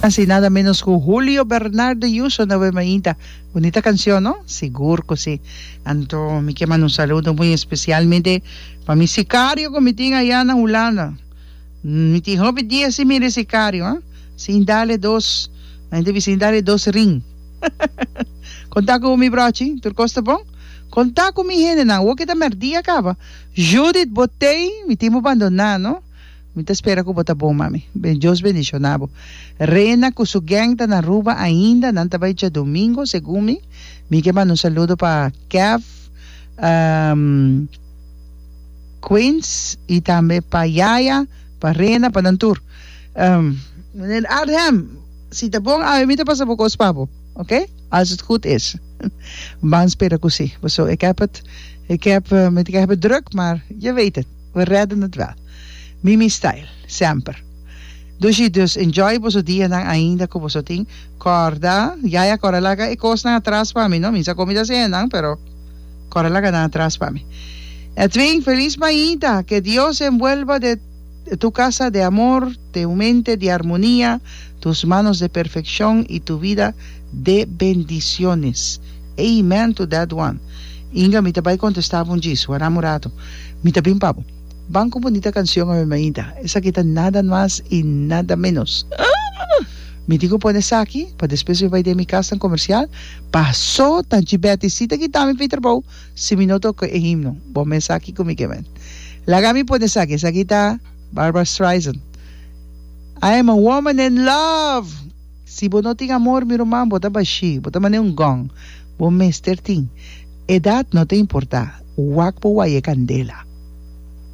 Casi nada menos cu Julio Bernardo Yuso na we mainta. Bunita cancion no? Sigur cu si. Anto mi kier manda un saludo muy especialmente pa mi sicario cu mi tin aya na Hulanda. Mi tin hopi dia si mira e sicario, ha? Sin dale dos, la hende bisa sin dale dos ring. Conta cu mi brochi, tur cos ta bon? Conta cu mi hendenan, awor ke ta merdia caba. Judith Botey, mi tin bo bandona, no? Mi ta spera ku bo ta bon, mami. Dios bendishona bo. Rena ku su geng ta na Aruba ainda, nan ta bai djadumingo, segun mi. Mi ke manda un saludo pa Kev, Queens i tambe pa Yaya, pa Rena, pa nan tur. Meneer Adham, si ta bon awe mi ta pasa bo kos pa bo, oke? Als het goed is. Ban spera ku si. Paso, ik heb het, ik heb, mi ta ke hebe druk, maar je weet het. We rèdde nòt wèl. Mimi style. Semper. Dushi dus enjoy boso dianan ainda ku boso tin kòrda. Yaya kòrda laga e kosnan atras pa mi no. Mi sa komi ta sende nan pero kòrda laga nan atras pa mi. Edwin feliz mainta ke Dios envuelva de tu kasa de amor, te un mente di armonia, tus manos de perfekshon i tu vida de bendisiones. Amen to that one. Inga mi ta bai contesta bo ndjis, wara murato. Mi ta bin pa bo. Ban cu bonita cancion awe mainta. Esaki ta nada mas y nada menos. Mi tin cu pone esaki pa despues mi bai den mi casnan comercial. Paso ta ndji Betty si ta kita mi pi trabao si mi no ta oco e himno. Bo mes aki cu mi kemen. Laga mi pone esaki. Esaki ta Barbra Streisand. I am a woman in love. Si bo no tin amor, mi ruman, bo ta bashí, bo ta man'é un gong. Bo mester tin. Edat no ta importá, wak bo waye candela.